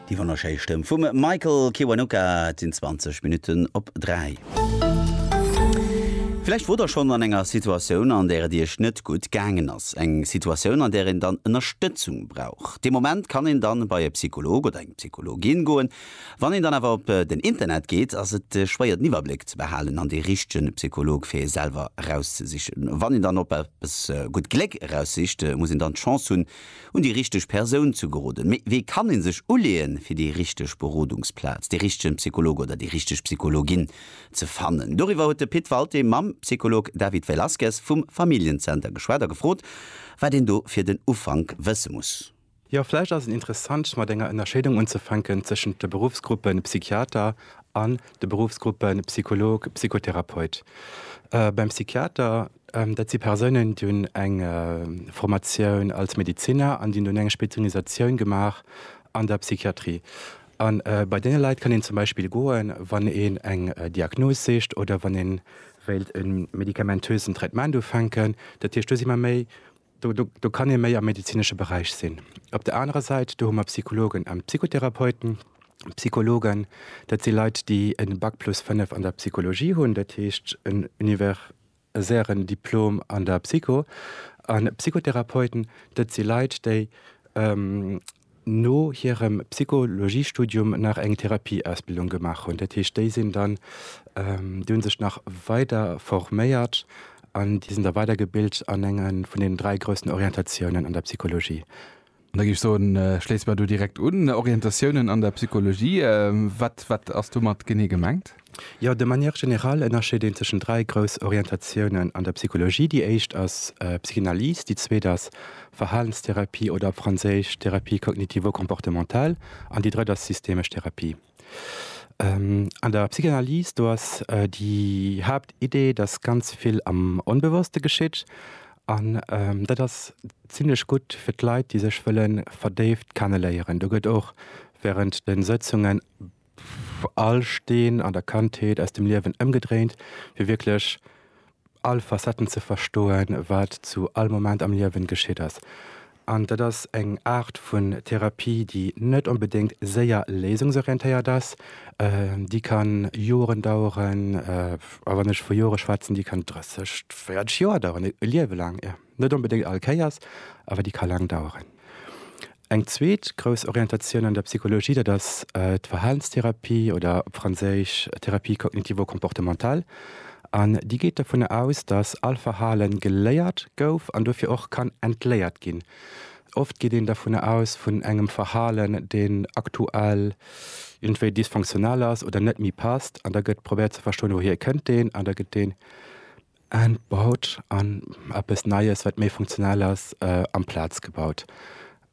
Déi wonnerschéi Stëmm vum Michael Kiwanuka, et sinn 20 Minutten op 3. Villäicht wor der schonn an enger Situatioun, an där et Iech net gutt gaangen ass. Eng Situatioun, an där een dann Ënnerstëtzung brauch. Dee Moment kann een dann bei e Psycholog oder eng Psychologin goen. Wann een dann awer op den Internet geet, ass et schwéier den Iwwerbléck ze behalen an dee richtegen Psycholog fir ee selwer erauszesichen. Wann een dann op eppes gutt Gléck eraussicht, muss een dann d'Chance hunn, Un déi richteg Persoun ze geroden. Mee wéi kann ee sech uleeën, fir déi richteg Berodungsplaz, dee richtegen Psycholog oder déi richteg Psychologin ze fannen? Doriwwer huet de Pit Walté mam Psycholog David Velasquez vum Familljen-Zenter geschwat a gefrot, wat een do fir den Ufank wësse muss. Jo, vläicht ass et interessant, mat enger Ënnerscheedung unzefänken tëschent de Beruffsgruppe Psychiater an de Beruffsgruppe Psycholog, Psychotherapeut. Beim Psychiater Dat si Persounen, déi hunn eng Formatioun als Medeziner an déi hunn dunn eng Spezialisatioun gemaach an der Psychiatrie. A bei deene Leit kann een zum Beispill goen, wann een eng Diagnos sicht oder wann ee wéilt e medikamentösen Traitement ufänken. Dat heescht, do si mer méi, do do kann ee méi am medezinesche Beräich sinn. Op der anerer Säit, do hu mer Psychologen an Psychotherapeuten. Psychologen, dat si Leit, déi e Bac plus fënnef an der Psychologie hunn, dat heescht en Univers sären Diplom an der Psycho. A Psychotherapeuten, dat si Leit, déi no hirem Psychologiestudium nach eng Therapieausbildung gemaach hunn. Dat heescht, déi sinn dann, déi hu sech nach weider forméiert an déi sinn da weidergebilt an enge vun deenen dräi groussen Orientatiounen an der Psychologie. An da géif ech soen, schléisse mer do direkt un, Orientatiounen an der Psychologie, wat, wat ass domat genee gemengt? Jo, de manière générale ënnerscheet een tëschent dräi grouss Orientatiounen an der Psychologie. Déi éischt ass Psychanalyse, déi zweet ass Verhalenstherapie oder op Franséisch Thérapie cognitivo-comportementale an déi drëtt ass systemesch Therapie. An der Psychanalyse, do ass déi Haaptidee, datt ganz vill am Onbewosste geschitt. An dat ass zimmlech gutt fir d'Leit, déi sech wëlle verdéift kenne léieren. Do gëtt och während de Sëtzungen all Steen an der Kandheet aus dem Liewen ëmgedréint, fir wierklech all Facetten ze verstoen, wat zu all Moment am Liewen geschitt ass. An dat ass eng Aart vun Therapie, déi net onbedéngt séier léisungsorientéiert ass, déi kann Joren daueren, a wann ech vu Jore schwätzen, déi kann 30, 40 Joer daueren, e Liewe laang. Net onbedéngt all Kéiers, awer déi ka laang daueren. Eng zweet grouss Orientatioun an der Psychologie, dat ass d'Verhalenstherapie oder op Franséisch Thérapie cognitivo-comportementale. An déi geet dovunner aus, datt all Verhale geléiert gouf an dofir och kann entléiert ginn. Oft geet een dovunner aus, vun engem Verhalen, deen aktuell iergendwéi dysfonctionnel ass oder net méi passt. An da gëtt probéiert ze verstoen, wouhier kënnt deen? An da gëtt dee Entbaut an eppes Neies, wat méi funktionell ass, amplaz gebaut.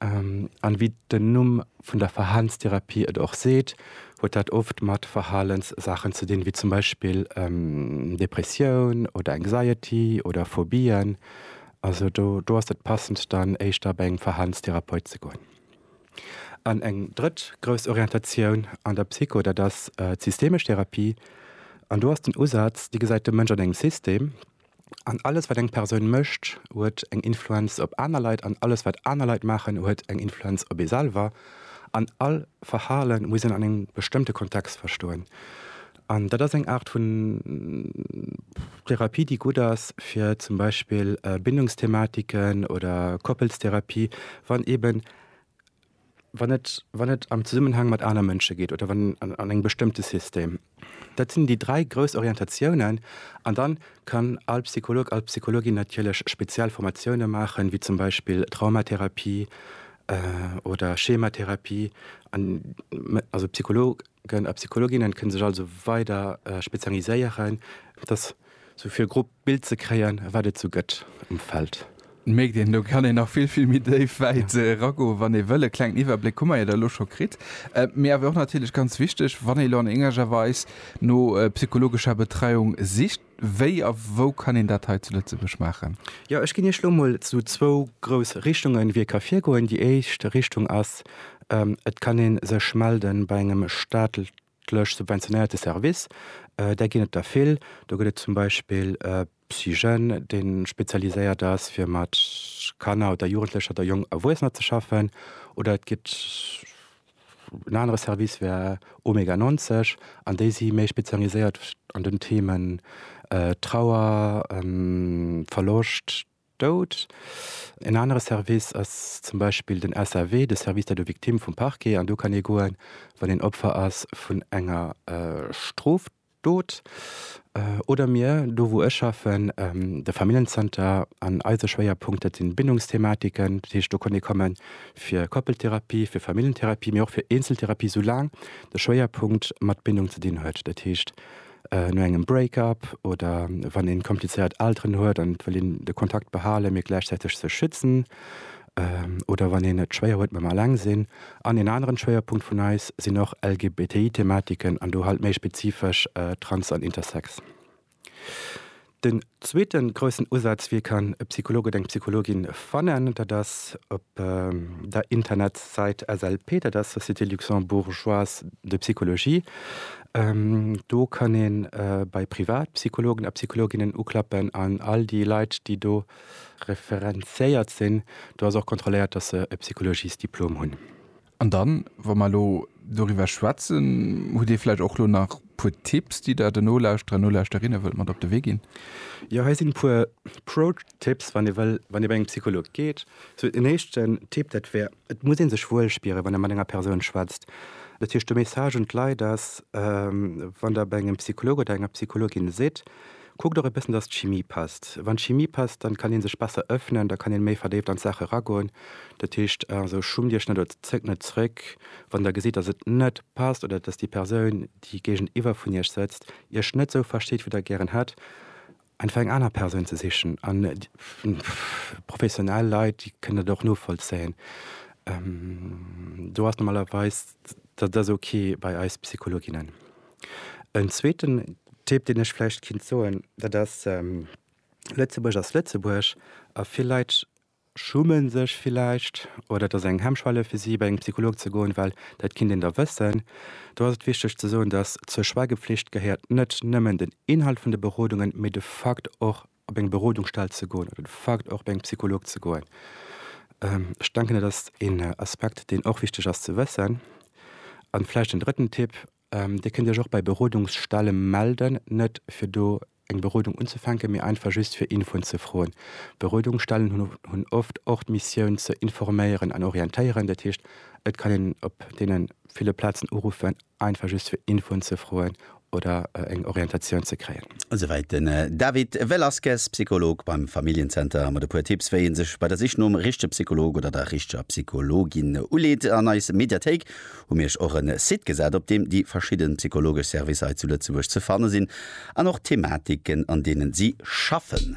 An wéi den Numm vun der Verhalenstherapie et och seet, huet dat oft mat Verhalenssaachen ze dinn, wéi zum Beispill Depressioun oder Anxiety oder Phobien. Also do ass et passend dann éischter bei engem Verhalenstherapeut ze goen. An eng drëtt grouss Orientatioun an der Psycho, dat ass d'systemesch Therapie. An do ass den Usaz, déi gesäit de Mënsch an engem System an alles, wat eng Persoun mécht, huet eng Influenz op aner Leit an alles, wat aner Leit maachen, huet eng Influenz op ee selwer. An all Verhale muss een an engem bestëmmte Kontext verstoen. An dat ass eng Aart vun Therapie, déi gutt ass fir zum Beispill Bindungsthematiken oder Koppelstherapie, wann eben, wann et, wann et am Zesummenhang mat aner Mënsche geet oder wann an engem bestëmmte System. Dat sinn déi dräi grouss Orientatiounen. An da kann all Psycholog, all Psychologin natierlech speziell Formatioune maachen, wéi zum Beispill Traumatherapie oder Schematherapie. An also Psycholog. Gëllen a Psychologinnen kënne sech also weider spezialiséieren, fir dass sou fir e grob Bild ze kréien, wat et sou gëtt um Feld. Mierkt een, do kann een nach vill, vill méi déif wäit eragoen, wann ee wëll. E klengen Iwwerbléck hu mer jo da elo scho kritt. Mee awer och natierlech ganz wichteg, wann ee elo an éngerger Weis no psychologescher Betreiung sicht, Wéi a wou kann een dat hei zu Lëtzebuerg maachen? Jo, ech ginn Iech elo mol esou zwou grouss Richtungen, wéi ee ka virgoen. Déi éischt Richtung ass, Et kann ee sech melde bei engem staatlech subventionéierte Service. Där ginn et der vill. Do gëtt et zum Beispill Psyjeunes, dee spezialiséiert ass, fir mat Kanner oder Jugendlecher oder jonk Erwuessener ze schaffen. Oder et gëtt. En anere Service wär Omega 90 an déi si méi spezialiséiert an den Themen Trauer, Verloscht, Doud. En anere Service ass zum Beispill den SAV, de Service d'aide aux victimes vum Parquet, an do kann ee goen, wann een Opfer ass vun enger Stroftat. Dot, oder mir, do wou ech schaffen, de Familljenzenter, an eise Schwéierpunkt, dat sinn Bindungsthematiken, dat heescht do konnt ee komme fir Koppeltherapie, fir Familljentherapie, mee och fir Eenzeltherapie, soulaang de Schwéierpunkt mat Bindung ze dinn huet, dat heescht no engem Break-up oder wann ee komplizéiert Elteren huet an et wëll een de Kontakt behalen, mee gläichzäiteg sech schützen. oder wann een et schwéier huet mam Alleng sinn. An een aneren Schwéierpunkt vun eis sinn och LGBTI-Thematiken an do halt méi spezifesch Trans an Intersex. Den zweeten groussen Usaz, wéi kann e Psycholog oder eng Psychologin fannen, dat ass op der Internetsait SLP, dat ass Société Luxembourgeoise de Psychologie. Do kann ee bei Privatpsychologen a Psychologinnen uklappen an all déi Leit, déi do referenziéiert sinn, do ass och kontrolléiert, dass se e Psychologiesdiplom hunn. An dann, wa mer elo doriwwer schwätzen, hutt Dir vläicht och elo nach e puer Tipps, déi Der den Nolauschterer an Nolauschterinnen wëllt mat op de Wee ginn? Jo, hei sinn e puer Pro-Tipps, wann ee wëll, wann ee bei engem Psycholog geet. Sou en éischten Tipp, dat wär, Et muss ee sech wuel spieren, wann ee mat enger Persoun schwätzt. Dat heescht, de Message un d'Leit ass, wann der bei engem Psycholog oder enger Psychologin sidd, kuckt och e bëssen, datt d'Chimie passt. Wann d'Chimie passt, dann kann ee sech besser ëffnen, da kann ee méi verdéift an d'Saache eragoen. Dat heescht also, schummt Iech net oder zéckt net zréck, wann der gesitt, datt et net passt oder datt déi Persoun, déi géigeniwwer vun Iech sëtzt, Iech net esou versteet, wéi Der gären hätt. Einfach eng aner Persoun ze sichen. An professionell Leit, déi kënnen dat och novollzéien. Do ass normalerweis, dat ass ok bei eis Psychologinnen. En zweeten Tipp, deen ech vläicht kéint soen, dat ass, Lëtzebuerg ass Lëtzebuerg a vill Leit schummen sech villäicht oder et ass eng Hemmschwelle fir si bei engem Psycholog ze goen, well dat kinnt een da wëssen. Do ass et wichteg ze soen, datt zur Schweigepflicht gehéiert net nëmmen den Inhalt vun de Berodungen, mee de Fakt och op eng Berodungsstell ze goen oder de Fakt och bei engem Psycholog ze goen. Ech denken dat ass een Aspekt deen och wichteg ass ze wëssen. An vläicht en drëtten Tipp, Dir kënnt Iech och bei Berodungsstelle melden, net fir do eng Berodung unzefänken, mee einfach just fir Infoen ze froen. Berodungsstellen hunn oft och d'Missioun ze informéieren an orientéieren. Dat heescht, et kann een op deene ville Plazen uruffen, einfach just fir Infoen ze froen oder eng Orientatioun ze kréien. Esouwäit den David Velasquez, Psycholog beim Familljen-Zenter, mat e puer Tipps, wéi ee sech bei der Sich nom richtege Psycholog oder der richteger Psychologin uleet an eis Mediathéik. hu mir iech och en Site gesat op deem déi verschidden psychologesch Servicer hei zu Lëtzebuerg ze fannen sinn an och d'Thematiken an deenen si schaffen.